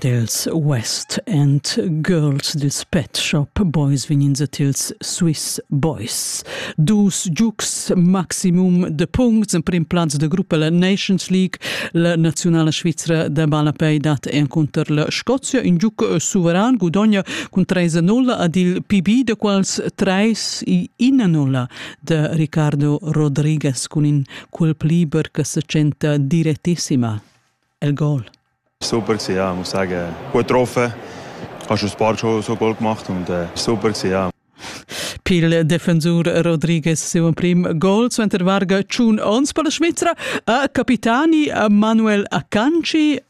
dels West and Girls dils Pet Shop Boys vininsa tils Swiss Boys. Dus giugs maximum de puncts en prim plaz de gruppa la Nations League, la nazionala svizzera de balapei dat encounter la Scozia, in giug suveran gudogna cun 3-0 ad il PB, de quals 3 i 1-0 de Ricardo Rodriguez cun in quel pliber che se tschenta direttissima, el gol. Super gewesen, ja, ich muss sagen, gut getroffen. Hast du ein paar schon so Goal gemacht und äh, super gewesen, ja. Pil defensur Rodriguez seu prim gol suenter varga tschun ons per la Svizra a capitani Manuel Akanci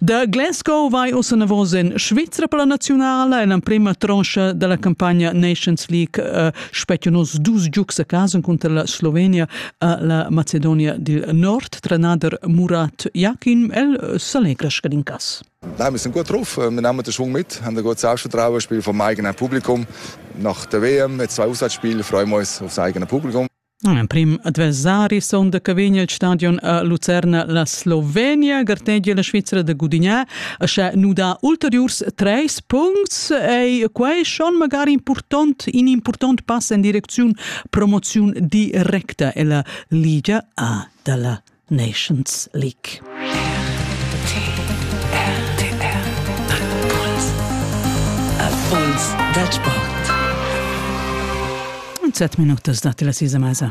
Da Glasgow vai ussa enavos en Svizra per la naziunala en l'emprima troncha da la campagna Nations League uh, spettian oz dus giugs a casa cunter la Slovenia a la Macedonia dil Nord. Trenader Murat Jakin, el uh, s'allegra scadin cas. Nein, wir sind gut drauf. Wir nehmen den Schwung mit, haben ein gutes Ausschauspiel vom eigenen Publikum. Nach der WM mit zwei Auswärtsspielen freuen wir uns aufs eigene Publikum. Emprim adversari sonda che vegn il stadion a Lucerna la Slovenia gartegia la Svizra da gudignar a sche nu dà ulteriurs treis puncts ei quei schon magari important in important pass in direcziun promoziun directa ella Liga A dalla Nations League. Afuns dal sport. Zet minutas dati la sisa mesa.